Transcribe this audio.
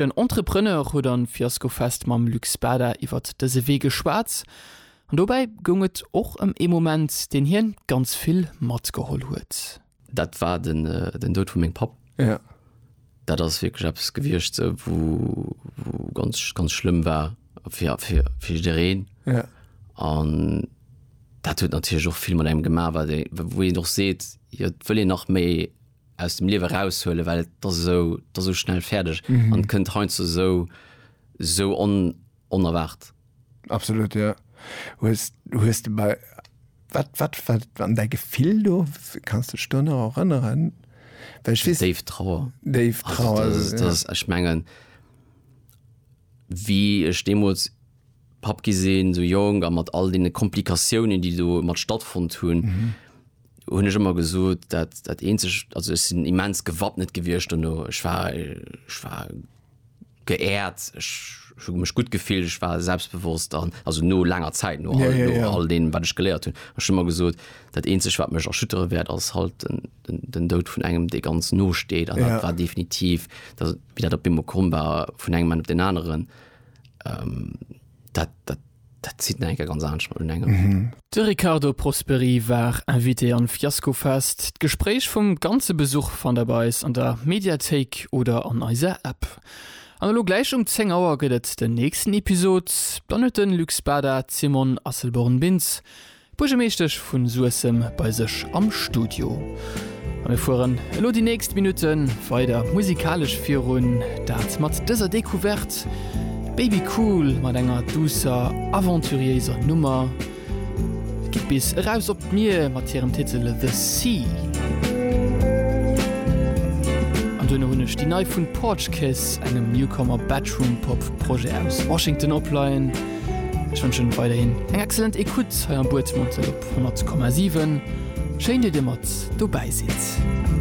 Den Entrepreneur huet am Fiaskofest mam Luc Spada iwwert dëse Wee geschwat an dobäi goung et och ëm ee Moment, deen hien ganz vill matgeholl huet. Dat war den Doud vu mengem Papp. Dat ass wierklech eppes gewiescht, wou ganz, ganz schlëmm war fir jiddereen. An dat huet natierlech och vill mat engem gemaach, wou een och seet, jo et wëll een nach méi aus dem Liewe raushuelen, well et ass esou, et ass esou schnell fäerdeg an et kënnt heiansdo esou, esou on, onerwaart. Absolut, jo. Hues, hues de bei, wat, wat war dann däi Gefill do? Kanns de dech do nach erënneren? Well ech weess, Déif Trauer. déif Also, Trauer, dat ass, dat ja. ass, ech mengen, wéi ech deemools Papp gi sinn, esou jonk a mat all deene Komplikatiounen, déi domat stattfonnt hunn, hunn ech ëmmer gesot, dat dat eenzegt, also ech sinn immens gewappnet gewiescht dono, ech war ech war geehrt, ech ech hu mech gutt gefillt, ech war selbstbewosst an also no laanger Zäit, no all no all deem wat ech geléiert hunn, ech hunn ëmmer gesot, dat eenzegt wat mech erschüttere wäert ass halt den den den Doud vun engem dee ganz no steet an dat war definitiv dat wéi dat op eemol komm war vun engem Moment op deen aneren, dat dat Dat zitt nach eng Kéier ganz anescht mat enengem. De Riccardo Prosperi war Invité am Fiaskofest. D'Gespréich vum ganze Besuch fannt der bei eis an der Mediathéik oder an eiser App. An elo gläich um 10 Auer gëtt et den nächsten Episod. Dann huet de Luc Spada d'Simone Asselborn-Bintz D'Buergermeeschtesch vu Suessem bei sech am Studio a mir fueren elo déi nächst Minutte weider musikalesch virun, dat mat dëser Decouverte Baby Cool mat enger duusser, aventuriéiser Nummer. Et geet bis eraus op d'Mier mat hirem Titel The Sea. An duerno hunn ech déi nei vun Porch Kiss, engem Newcomer Bedroom-Pop Projet aus Washington opleien. Ech wënschen weiderhin eng excellent Ecoute hei am Buedmanntel op 100,7. Schéin, datt Dir mat dobäi sidd.